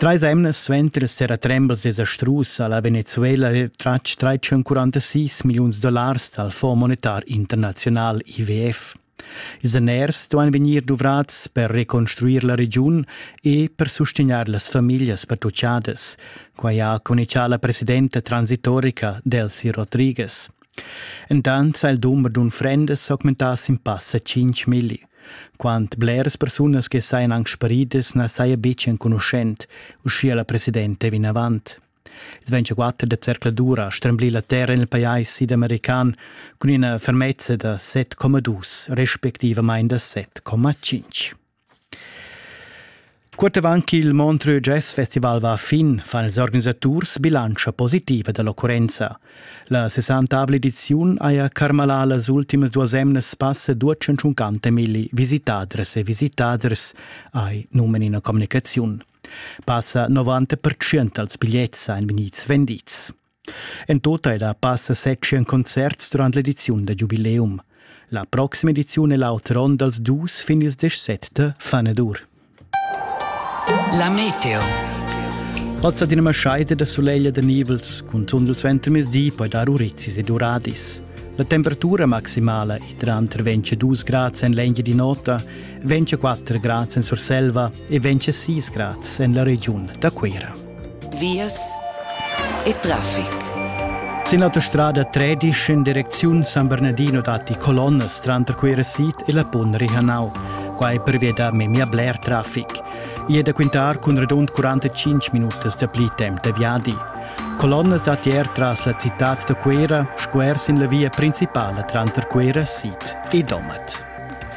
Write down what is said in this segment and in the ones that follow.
Treis emnas suenter s'era tremblas desastrus ha la Venezuela retratg 346 milliuns dollars dal Fonds monetar internaziunal IWF. Ils daners duain vegnir duvrads per reconstruir la regiun e per sustegnair las famiglias pertuchadas. Quai ha communichà la presidenta transitorica Delcy Rodriguez. Entant ha il dumber d'unfrendas augmentà sin passa 5 milli. Quant bleras persunas che sajan anc sparidas na saja betg enconuschent, uschia la presidenta vinavant. Sventschaquatter da zercladura ha stremblì la terra en il pajais sidamerican cun ina fermezza da 7,2 respectivamain da 7,5. Cuort avant ch'il Montreux Jazz Festival va a fin, fan ils organisaturs bilantscha positiva dall'occurrenza. La 60 ediziun haja carmalà las ultimas duas emnas passa 250 milli visitadres e visitaders, hai numen ina communicaziun. Passa 90% dals bigliets ein vegnids vendids. En tota era passa section concerts durant l'ediziun da giubileum. La proxima ediziun è l'auter onn dals dus fin ils 17 Fanedur. La Meteo. Ozza dinama scheide da soleglia da nivels cun tundel suenter mezdi poi dar urizis ed uradis. La temperatura maximala è tranter 22 grad en l'engia di nota, 24 grad en Surselva e 26 grad en la regiun da Cuira. vias e traffic. Sin l'autostrada 13 in direcziun San Bernardino datti colonnas tranter quera sit e la pun Rihanau. Quai pervia da memia bler traffic. I è da quintar cun radund 45 minutas da pli temp da viadi. Colonnas datti er tras la citad da Cuera, squer sin la via principala tranter Cuera, Sit e Domat.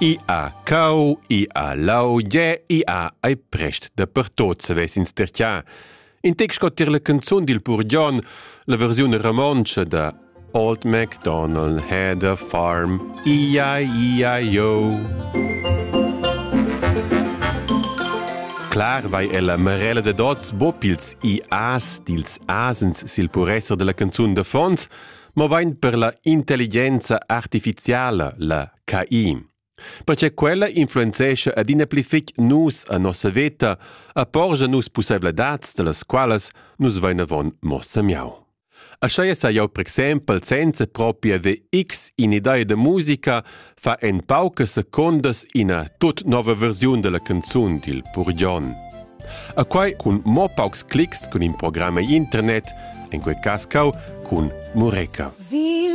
I ha cau, i ha lau, gie, i ha ei prest dapertot savess ins tertiar. In tec sco tier la canzun dil pur Jon, la versiun romontscha da Old MacDonald had a farm, ia, ia, yo. Clar vai ella marella de dots bopils i as dils asens sil puresser della canzun de fons, ma bein per la intelligenza artificiala, la KI. Perche quella influenzescha adina pli fitg nus a nossa veta, a porgia nus pussaivladads, dallas qualas nus vain avon mo samiau. Ascheia sa jau per exempel senza proprio haver x in idea de musica fa en paucas secondas ina tut nova versiun della canzun dil Purgion. A quai cun mo paucs clics cun in programma internet, en quei cas cau cun Mureca. Wie